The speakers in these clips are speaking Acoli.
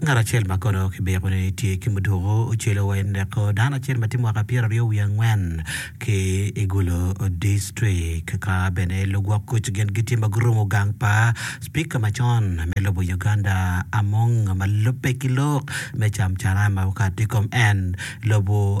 Ngat acel ma kono kibiko ni tye ki muduku ocelo wa ineko dano acel ma tye mwaka pyeraryo wiye angwen ki i Gulu dictrict ka bene lugwok kuc gin gitye ma gurumo gang pa Cipika macon me lobo Uganda Among ma lubbe ki lok me Camcara ma okato i kom en lobo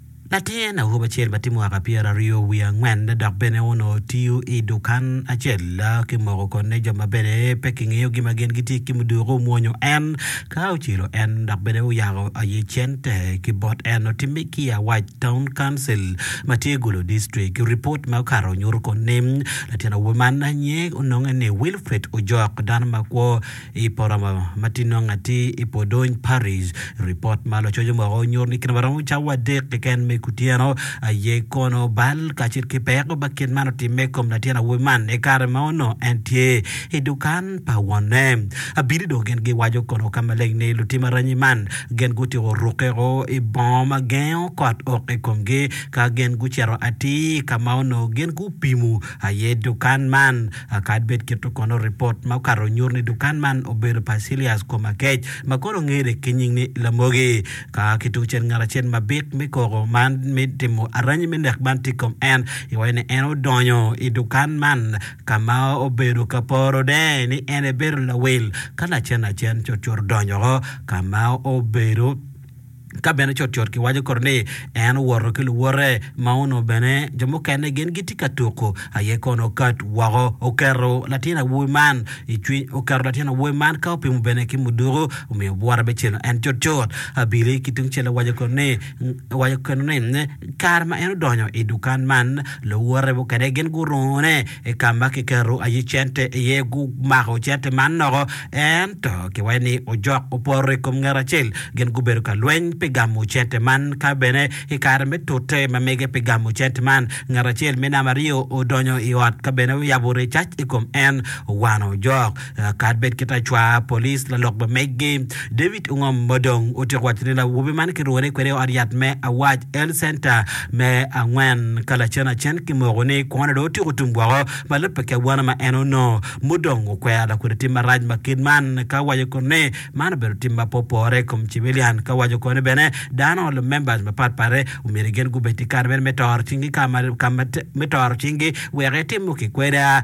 Latin awobi acel ma tye mwaka pyeraryo wiye angwen dok bene onongo tiyo i dukan acel ki moko konne jo ma bene pe kingeyogi ma gin gitye ki muduku omwonyo en ka ocelo en dok bene oyako aye cente ki bot en. Otimme ki i Awac Town Council ma tye Gulu District. Ripot ma okato nyuto konne latin awobi man nyinge ononge ni Wilfred Ojok dano makwo. I poto ma tye nongo atir i Podony Parish, ripot ma lacoc omoko nyuto ni kit ma romo cawa adek keken me kutyeno aye kono bal kacel ki peko ma kit man otimme i kom latin awobi man i kare ma onongo en tye i dukan pa wonne. Abili dong gin giwaco kono ka maleng ni lutim aranyi man gin gutyeko rukke woko i bongo ma gengo kot ok i komgi ka gin gucito atir ka ma onongo gin gupimo aye dukan man. Akad bed kit-tu kono, ripot ma okato nyuto ni dukan man obedo pa Cilias Komakec, ma kono ongene ki nying ni Lamogi. Ka ki tungcel, ngat acel ma bik me koko ma timo aranyi me nek man tye i kom en, iwaco ni en odonyo i dukan man ka ma obedo ka poro de ni en aye bedo lawil. Ka lacen lacen, cutcut odonyo woko ka ma obedo. Ka bene cutcut kiwaco kore ni en owoto ki luwote ma onongo bene jo mukene gin gitye ka tuko, aye kono okat woko oketo latin awobi man i cwiny oketo latin awobi man ka opimo bene ki muduku omiyo bwote bicino en cutcut. Abili ki tungcel owaco kore ni owaco kene ni kare ma en odonyo i dukan man luwote mukene gin gurungune I ka ma kiketo aye cente iye, gumako cente man noko. Ento kiwaco ni ojok oporo i kom ngat acel, gin gubedo ka lweny pi gamo cente man. Ka bene i kare me tute ma mege pi gamo cente man, ngat acel me namba aryo odonyo i ot ka bene oyabo recac i kom en, owano ojok. Kadi bed kit acwar polis lalok bemeggi, David Ungom ma dong otyeko waco ni lawobi man kirwone kwede i ot yat me Awaj Health Centre me angwen ka lacen acen kimoko ni kwone dong otyeko tum woko ma lubbe ki awano ma en onongo mudong okwero lakwede tim marac ma kit man ka owaco kono ni man obedo tim ma pe opore i kom cibilian ka owaco kono ni bene dano lumemba mapat pat omyero gin gubed ki kare bene me toro cinggi ka ma me toro cinggi wek etimo kikweda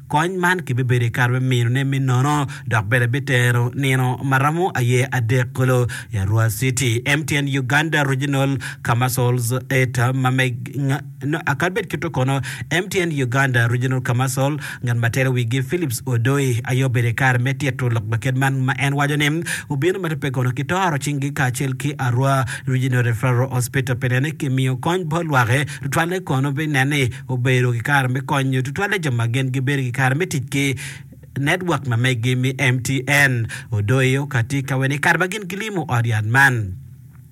Kony man kibibedo i kare me minone me nono dok bene bitero nino ma romo aye adek kulu i Arua City, MTN Uganda Regional Kamassols Eta Mameg nyo kadi bed kit-tu kono, MTN Uganda Regional Kamassol ngat ma telo wigi Phillips Odoi aye obedo i kare me tito lok ma kit man ma en waco ni obino ma tubbe kono kitoro cinggi kacel ki Arua Regional Referral Hospital pi nene kimiyo kony bot lwak-ki tutwalle kono pi nen ni obedo ki kare me konyo tutwalle jo ma gin gibedo ki kare me tic ki netwok ma megi me MTN. Odoyo ka tye ka wene i kare ma gin gilimo ot yat man,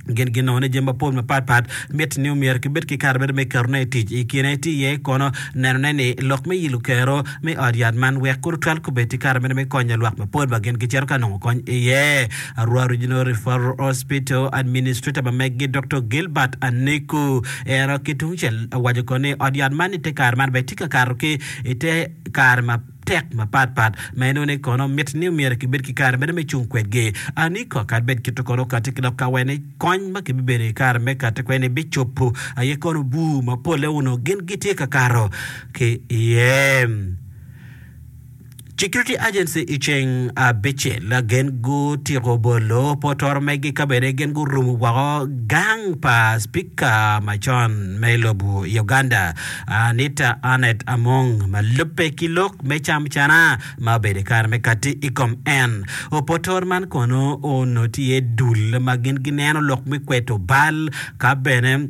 gin ginongo ni jami mapol mapatpat mitte ni omyero kibed ki kare mere me ketone i tic. I kine tye iye kono nenone ni lok me yilo kero me ot yat man wek kor otwal kubed ki kare mere me konyo lwak mapol ma gin gicito ka nongo kony iye. Arua Regional Referral Hospital Administrator ma megi Doktor Gilbert Aniku Ento ki tungcel, awaco kono ni ot yat man i te kare man bene tye ka kato ki i te kare matek mapatpat ma inongo ni kono mitte ni myero kibed ki kare meno me cung kwedgi. Aniko kadi bed kit-tu kono kati ki dok kawene kony ma kibibedo i kare me kati kwene-ni bicobo, aye kono bur mapolle onongo gin gitye ka kato ki iye. Security Agency i ceng abicel gin gutiko bolo potoro megi ka bene gin gurumo woko gang pa Spika macon me lobo i Uganda Anita Annet Among ma lubbe ki lok me cam cana ma obedo i kare me kati i kom en. Opotoro man kono onongo tye dul ma gin gineno lok me kweto bal ka bene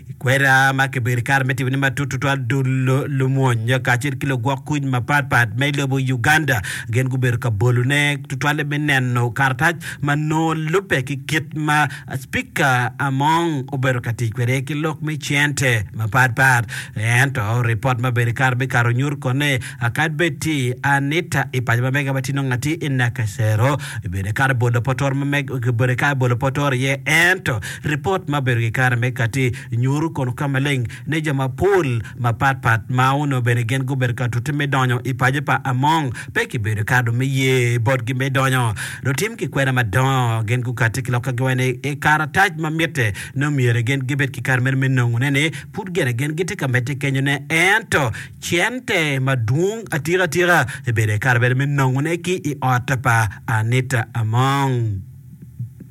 I kwena ma kibedo i kare me timone matut tutwal, dul lumwony kacel ki lugwok kuc mapatpat me lobo Uganda gin gubedo ka bolone tutwalle me neno karatac ma nongo lubbe ki kit ma Spika Among obedo ka tic kwede ki lok me cente mapatpat. Ento ripot ma obedo i kare me kato nyuto kono ni kadi bed tye i Anita i paco ma mega ma tye nongo atye i Nakasero, obedo ikato bolo potoro ma mega obedo ikato bolo potoro iye ento Ripot ma obedo ki kare me katti nyuru kono ka maleng ni jo mapol mapat pat ma onongo bene gin gubedo ka tute me donyo i paco pa Among pe kibedo kado me ye botgi me donyo. Lutim ki kwena madongo gin gukatti ki lokka giwaco ni i karatac ma mitte nongo myero gin gibed ki kare meno me nongone ni pud gene gin gitye ka medde kenyone ento cente madwong atika tika kibedo i kare meno me nongone ki i ot pa Anita Among.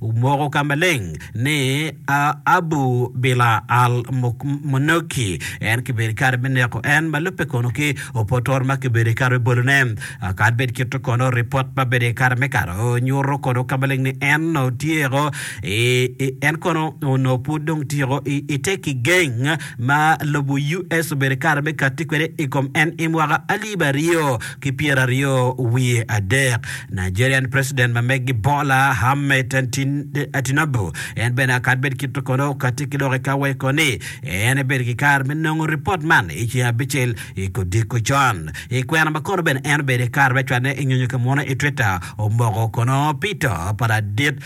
Omoko ka maleng ni a Abu Bila al Munoki en kibedo kare me neko en ma lubbe kono ki Opotor ma kibedo kare me bolone. Akad bed kito kono ripot ma bedo kare me kare nyuto kono ka maleng ni en no tyeko en kono no pud dong tyeko i te ki geng ma lobo US obedo kare me kati kwede i kom en i mwaka alip aryo ki pyera aryo wiye adek. Nigerian president ma megi Bola Ahmed Tinubu en bene akad bed kito kono okati ki lok eka weko ni en ebed ki kare me nongo ripot man i ceng abicel i kodiko con. I kwena ma kono bene en obedo i kare me cwane i nyonyo ka munu i Twitter omoko kono pito pa ladit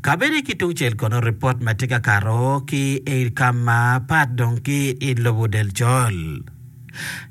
Kabedi ki tungcel kono ripot ma tye ka kato ki i kam ma pat dong ki i lobo del col.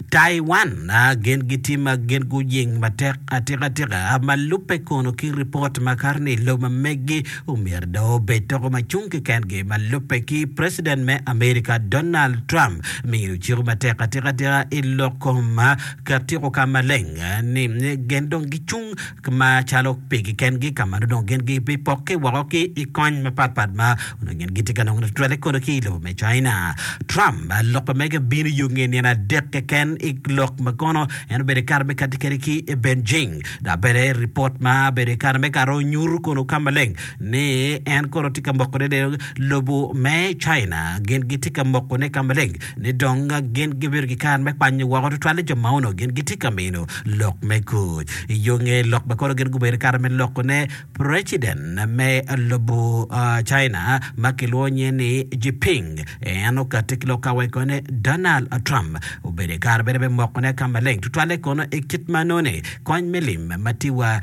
Taiwan gin gitye ma gin guying matek atika tika ma lubbe kono ki ripot ma kato ni lobo ma megi omyero dong obed toko ma cung kekengi ma lubbe ki preciden me America Donald Trump miyo ciko matek atika tika i lok kom Ket tyeko ka maleng ni gin dong gicung ma calo pigi kengi ka ma nongo gin gibipok ki woko ki i kony mapat pat ma onongo gin gitye ka nongo tutwalle kono ki i lobo me China. Trump loko mege bino yo nge nino adek keken i lok ma kono en obedo ikato me kati kede ki i Beijing dok bene ripot ma obedo ikato me karo nyuto kono ka maleng ni en kono tye ka moko ne lobo me China gin gitye ka mokone ka maleng ni dong gin gibedo ki kare me kwanyo woko tutwal jo ma onongo gin gitye ka mino lok me kuc. I yo nge lok ma kono gin gubedo ki kare me lokone, preciden me lobo China ma kilwongo nyinge ni Jiping en okatte ki lok ka weko ni Donald Trump obedo i kare bene me mokone ka maleng tutwalle kono i kit ma nongo ni kony me lim ma tye wa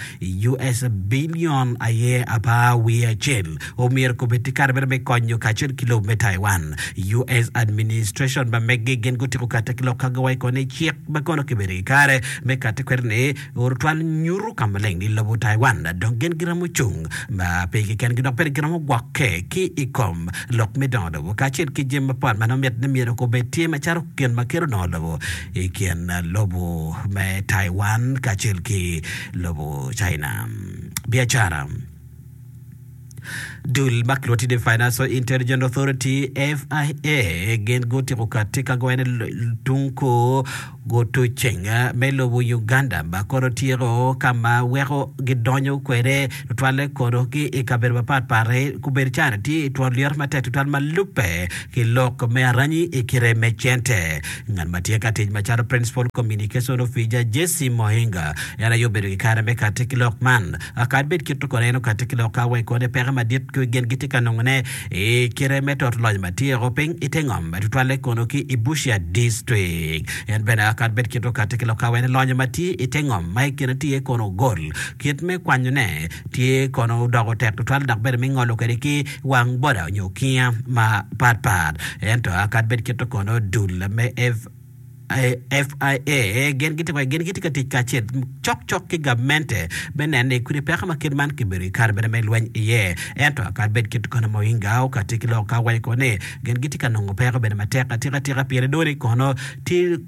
US bilion aye apar wiye acel omyero kobed tye kare mere me konyo kacel ki lobo me Taiwan. US administration ma meggi gin gutiko katte ki lok ka giwaco kong ni cik ma kono kibedo i kare me katte kwede ni orutwal nyuto ka maleng ni lobo Taiwan dong gin giromo cung ma pe keken gi dok bene giromo gwokke ki i kom lok me dongo lobo kacel ki jami mapol ma nongo mit ni myero kobed tye macalo gin ma kelo dongo lobo i kin lobo me Taiwan kacel ki lobo China. Biacara. Dul ma kilwongo ni Financial Intelligence Authority, FIA, gin gutiko kati ka gwene tung kor guto ceng me lobo Uganda ma kono tyeko ka ma weko gidonyo kwede tutwalle kono ki i kabedo mapat pat-ti kubedo cani tye i twon lyeto matek tutwal ma lubbe ki lok me aranyi i kite me cente. Ngat ma tye ka tic macalo Principal Communication Officer, Jesse Mohinga, en aye obedo ki kare me kati ki lok man. Kadi bed kit-tu kono, en okati ki lok ka weko kodi peke madit ki gin gitye ka nongone i kite me toto loc ma tye o piny i te ngom, ma tutwalle kono ki i Busia District. En bene kadi bed kit-tu okati ki lok ka weko ni lonyo ma tye i te ngom ma i kine tye kono ogol, kit me kwanyone tye kono odoko tek tutwal dok bene me ngolo kwede ki wang boda onyo okinga ma pat pat. Ento akad bed kito kono dul me FIA gin gitye wai gin gitye ka tic kacel cok cok ki gamente me neno ni kodi peko ma kit man kibedo kare bene me lweny iye. Ento akad bed kito kono ma Oinga okati ki lok ka waco kono ni gin gitye ka nongo peko bene matek atika tika pire dong ni kono tye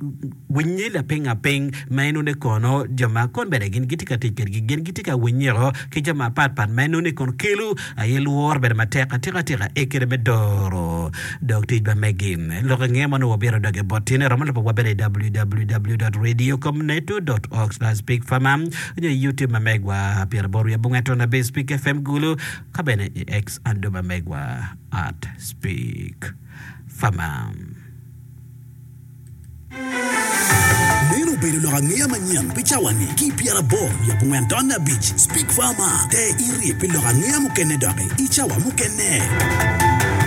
Winyi lapinga piny ma enoni kono jo ma kon bene gin gitye ka tic kwedgi gin gitye ka winyiko ki jo mapat pat ma enoni kono kelo aye lworo bedo matek atika tika i kine me doro dog tic ba megi lok i nge mono wabito doge bot tyene romo lubo wa bene i www.radiocomneto.org/bigpharma nyo i youtube ma megwa pyera aboro wiye abongo ato nabir speak fm gulu ka bene i X ando ma megwa at speak pharma. Meno obedo lok angeya manyen pi cawa-ni. Ki pyera aboro nyo abongwen taun me abic, Speke Farmer te irye pi lok angeya mukene doki i cawa mukene.